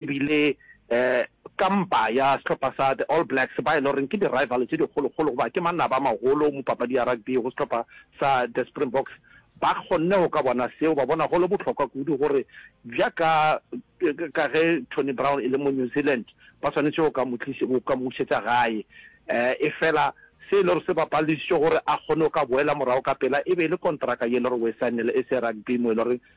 E bile um kampa ya sehlopha sa The All Blacks ba e le goreng ke di-rival tše dikgolokgolo goba ke manaba a magolo mo papadi ya rugby go sehlopha sa The Springboks ba kgonne go ka bona seo. Ba bona go le bohlokwa kudu gore bja ka ka ge Tony Brown e le mo New Zealand ba swanetše go ka mo go ka mo bušetša gae um efela se e le gore se ba paledišitše gore a kgone go ka boela morago ka pela e be e le kontraka ye e le gore o e saenele e se rugby mo e le gore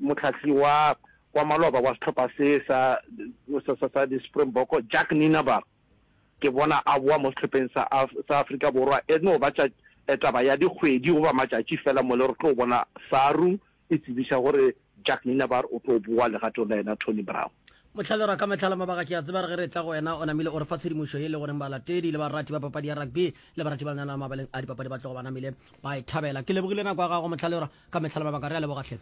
Mohlahli wa wa maloba wa sehlopha se sa sa sa sa di-Springbok Jack Nienaber ke bona a boa mo sehlopheng sa sa Afrika Borwa e no ba tša eh, taba ya dikgwedi goba matšatši fela mo le re tlo bona Saru e tsebiša gore Jack Nienaber o tlo boa legatong la yena Tony Brown Mohlale ra ka metlhala mabaka ke a tseba re ge re tla go wena o namile o re fa tshedimošo ye le goreng balatedi le barati ba papadi ya rugby le barati ba lenyana la mabaleng a dipapadi ba tlogo ba namile ba e thabela ke lebogile nako ya gago mohlale ra Ka mehla le mabaka re a leboga hle.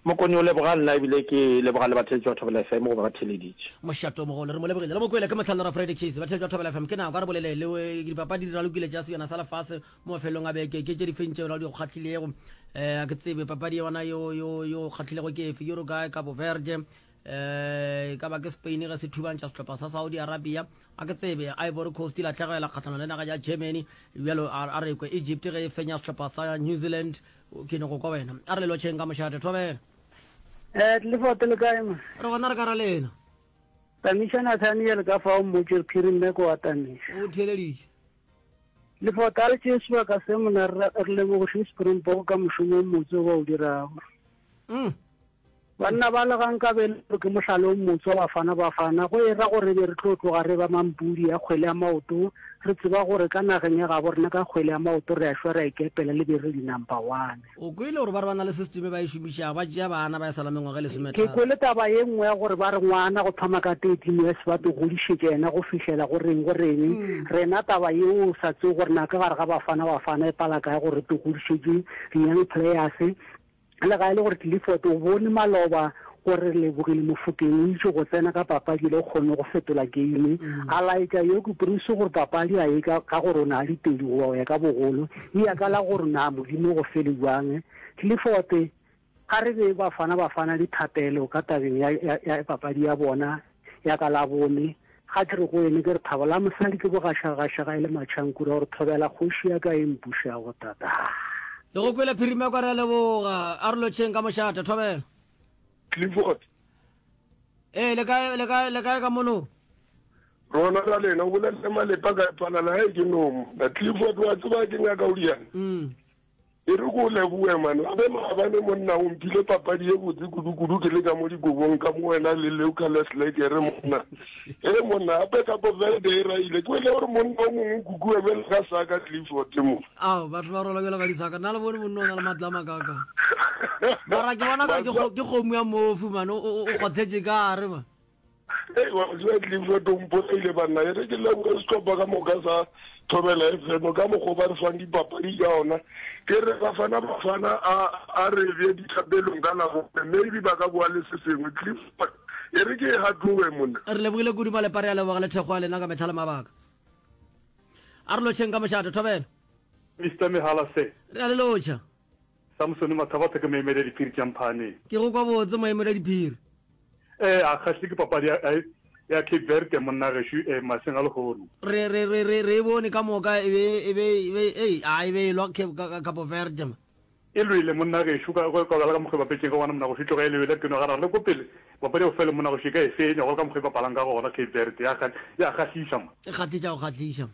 Mokoni o leboga nna ebile ke leboga le batheetši ba Thobela FM go ba ba theeleditše. Mošate o mogolo re mo lebogile re mo kwele ke mohla le ra Friday Chase. Batheetši ba Thobela FM ke nako a re bolele le dipapadi di ralokile tša sebjana sa lefase mo mafelelong a beke ke tše di feng tšeo ra di go kgahlilego. Eh, a ke tsebe papadi yona yo yo yo kgahlilego ke efe? Uruguay, Cabo Verde, um ka ba ke spain ge se thubantša setlhopha sa saudi arabia a ke tsebe ivory coast latlhegela kgatlhanong le naga ya germany bjalo a re kwe egypt ge e fenya setlhopha sa new zealand ke ne go kwa wena a re lelotšheng ka mošate thobela Eh, tlefote le kae ma re gona re ka ra lena tamiša nathaniel ka fa o mmotse re khiri mme ko wa tamiša o theeleditše lefote a re tšee sebaka se mona re re lebogoše springbok ka mošomo o motse o ba o dirago mm. Banna bala ga nka be e le gore ke mohlala o motswa Bafana Bafana, go e ra gore e be re tlo tloga re eba mampudi a kgwele ya maoto, re tseba gore ka nageng ya gabo rena ka kgwele ya maoto re a šwa re a ikepela le be re di number one. O kwele gore ba re ba na le system e ba e šomišago, ba tšea bana ba ya sala mengwaga e lesometharo. Ke kwele taba ye nngwe ya gore ba re ngwana go thoma ka 13 years ba to godišetša yena go fihlela go reng go reng, rena taba yeo o sa tsebe gore na ka gare ga Bafana Bafana e pala kae gore re to godišetše di young players, Lega e le gore Clifford o bone maloba gore Relebogile Mofokeng o itše go tsena ka papadi le go kgonne go fetola geime, a laetša Yogi Prince gore papadi a e ka gore o ne a le pedi goba go ya ka bogolo, e ya ka la gore na Modimo o go fele bjang. Clifford, Ga re be Bafana Bafana dithapelo ka tabeng ya papadi ya bona. Ya ka la bone, ga ke re go ene, ke re, Thabo, la mosadi ke bogašagagašaga e le matšhankura gore thobela kgoši ya ka e mpušago tata. Le go kwele phirima kwa re a leboga. A re lotšheng ka mošate. Thobela. Clifford. Ee, le kae, le kae, le kae ka mono? Rona ra lena, o bolelele Malepa ka epalala, hai ke nomo. Na Clifford, wa tseba ke nyaka o riana? Mm. E re ko leboe man gape maabane monna o mphile papadi ye botse kudu-kudu ke le ka mo dikobong ka mo wena le leucales lekere monna e re monna gape ka poverde e raile ke wele gore monna o mongwe o kukua bjale ka saka clifford mo ao batho ba rola bjela ka disaka nna le bone monna o na le matlama kaka mara ke bona kare ke kgomo ya mofu mane o kgotshetše ka re ma Hey, wa tseba ke lefo tompo e ile banna e re ke leboge setlhopha ka moka sa thobela fm ka mokgwa ba re fang dipapadi ka ona ke re bafana bafana a re bje dithapelong ka labone maybe ba ka boa le se sengwe clif e re ke e gatlowe monna re lebogile kudu malepare a leboga le thekgo a lena ka metlha le mabaka a re lotšheng ka mošato thobela mr mehala se re a le lotšha Samsone Mathabatha ke moemedi wa diphiri tša Mphane. Ke go kwa botse moemedi wa diphiri. Ee, a kgahlile ke papadi ya, ya, ya Cape Verde monna gešo e, mašeng a lehono. Re, re, re, re, re e bone ka moka e be, e be, e be, ei, a e be e lwa Cape, ka, ka Cape Verde ma. E lwele monna gešo ka, ka, ka bjala ka mokgwa e bapetšeng ka gona monna gešo e tloga e le yela peno. Ga ra re le ko pele papadi ya bofelo monna gešo e ka e fenya golo ka mokgwa e bapalang ka gona Cape Verde. Ya kga, ya kgahlisa ma. E kgahlisa go kgahlisa ma.